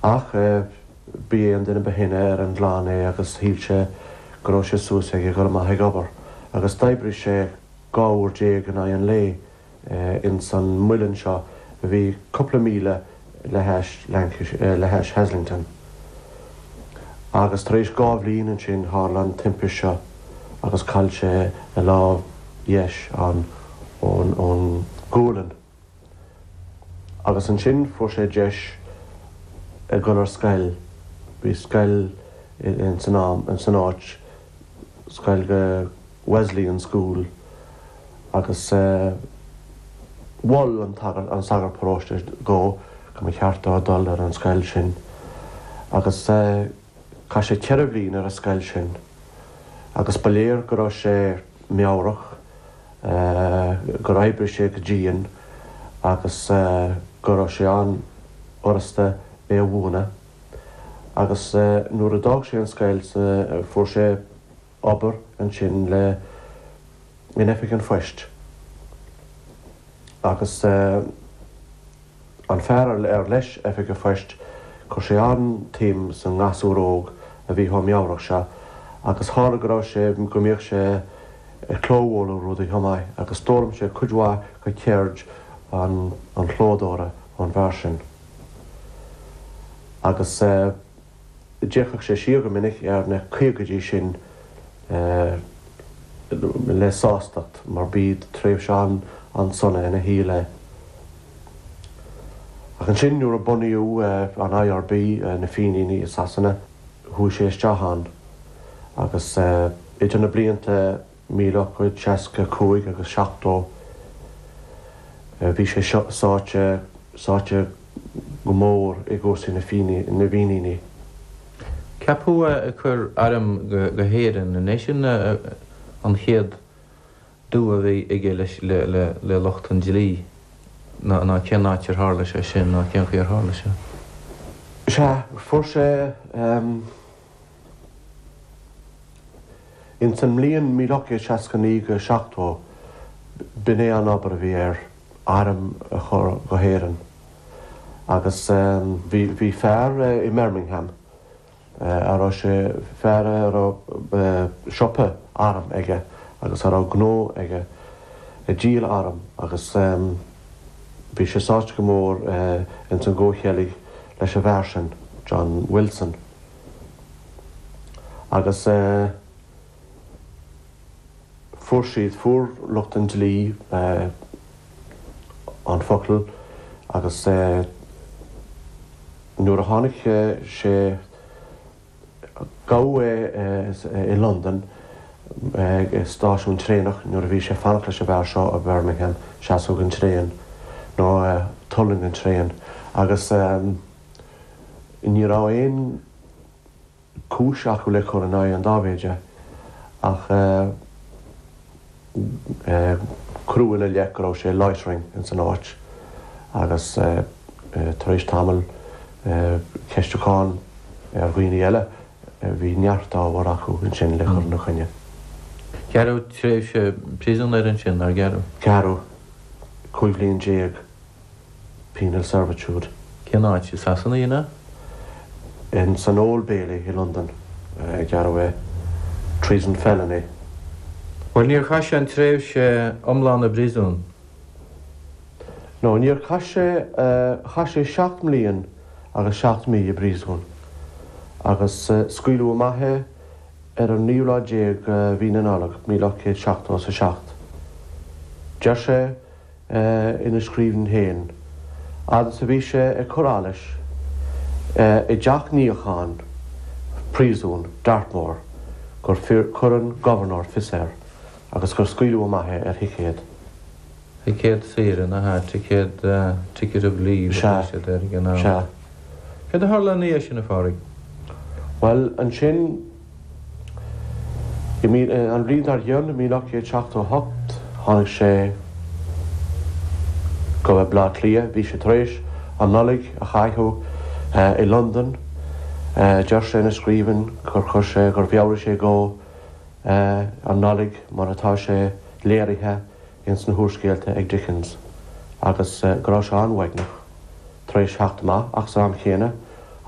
Ach b'é an duine ba shine ar an gclann é agus shíl sé go raibh sé suas aige a dhul amach ag obair agus d'oibrigh sé dhá uair déag in aghaidh an lae ins an muileann seo a bhí cúpla míle le hais Lancashire, le hais Haslingden. Agus tar éis dhá bhliain ansin tharla an timpist seo agus chaill sé a lámh dheis, an, ón, ón, ghualainn. agus ansin fuair sé deis a ghoil ar scoil, bhí scoil in san am in san áit, scoil Wesleyan School agus mhol an sagart an sagart paróiste dhó go mba cheart dó dul ar an scoil sin agus chaith sé ceithre bhliain ar an scoil sin agus ba léir go raibh sé meabhrach gur oibrigh sé go dian agus go raibh sé an-fhurasta é a mhúineadh agus nuair a d'fhág sé an scoil fuair sé obair ansin le in oifig an phoist agus An fear ar leis oifig an phoist, chuir sé an-tsuim sa ngasúr óg a bhí chomh meabhrach seo agus tharla go raibh sé, go mbíodh sé ag clóbhualadh rudaí chomh maith agus d'fhoghlaim sé cuid mhaith de cheird an chlódóra ón bhfear sin. Agus. D'fhéachadh sé siar go minic ar na caogaidí sin le sástacht mar b'í tréimhse an-sona ina shaol é. Ach ansin nuair a bunaíodh an IRB, na Fíníní, i Sasana chuaigh sé isteach ann agus idir na blianta Míle ocht gcéad, 65 agus 70, bhí sé seo sáite, sáite go mór i gcúrsaí na Fíníní, na bhFíníní. Ceapadh é ag cur airm go hÉirinn, an é sin an chéad dua a bhí aige leis, le, le, le lucht an dlí, ná, ná cén áit ar tharla sé sin, ná cén chaoi ar tharla sé? Sea, fuair sé, Ins an mbliain míle ocht gcéad 69 go 70 b'in é an obair a bhí air, airm a chur go hÉireann. Agus bhí fear i mBirmingham a raibh sé, fear a raibh siopa airm aige agus a raibh gnó aige ag díol airm agus bhí sé sáite go mór ins an gcomhcheilg leis an bhfear sin, John Wilson. agus fuair siad, fuair lucht an dlí an focal agus nuair a tháinig sé, gabhadh é i Londain ag stáisiún traenach nuair a bhí sé ag fanacht leis an bhfear seo as Birmingham, seasamh den traein nó tuirling den traein agus. Ní raibh aon chúis acu le cur in aghaidh an Dáibhéidigh ach cuireadh ina leith go raibh sé loitering ins an áit agus tar éis tamaill ceistiúchán ar dhaoine eile bhí neart ábhar acu ansin le cur ina choinne. Gearradh tréimhse príosúin air ansin, nár gearradh? Gearradh. Cúig bhliain déag. penal servitude. Cén áit i Sasana a déanadh é? Ins an Old Bailey i Londain a gearradh é. Treason felony. Bhuel, níor chaith sé an tréimhse iomlán i bpríosún. No, níor chaith sé, chaith sé seacht mbliain agus seacht mí i bpríosún agus scaoileadh amach é ar an naoú lá déag de mhí na Nollag, míle ocht céad seachtó is a seacht. Deir sé. ina scríbhinn féin fhad is a bhí sé ag cur allais i dteach níocháin phríosún Dartmoor gur chuir an Gobharnóir fios air agus gur scaoileadh amach é ar thicéad. Ticéad saoire, nach ea? Ticéad, ticket of leave a bhaist siad air ag an am. Sea. Céard a tharla ina dhiaidh sin, a Phádraig? Bhuel, ansin. An bhliain dar gcionn, míle ocht gcéad seachtó a hocht, tháinig sé go Baile Átha Cliath. Bhí sé tar éis an Nollaig a chaitheamh i Londain. Deir sé ina scríbhinn gur chuir sé, gur mheabhraigh sé dhó an Nollaig mar atá sé léirithe ins na húrscéalta ag Dickens agus go raibh sé an-uaigneach tar éis theacht amach ach san am chéanna,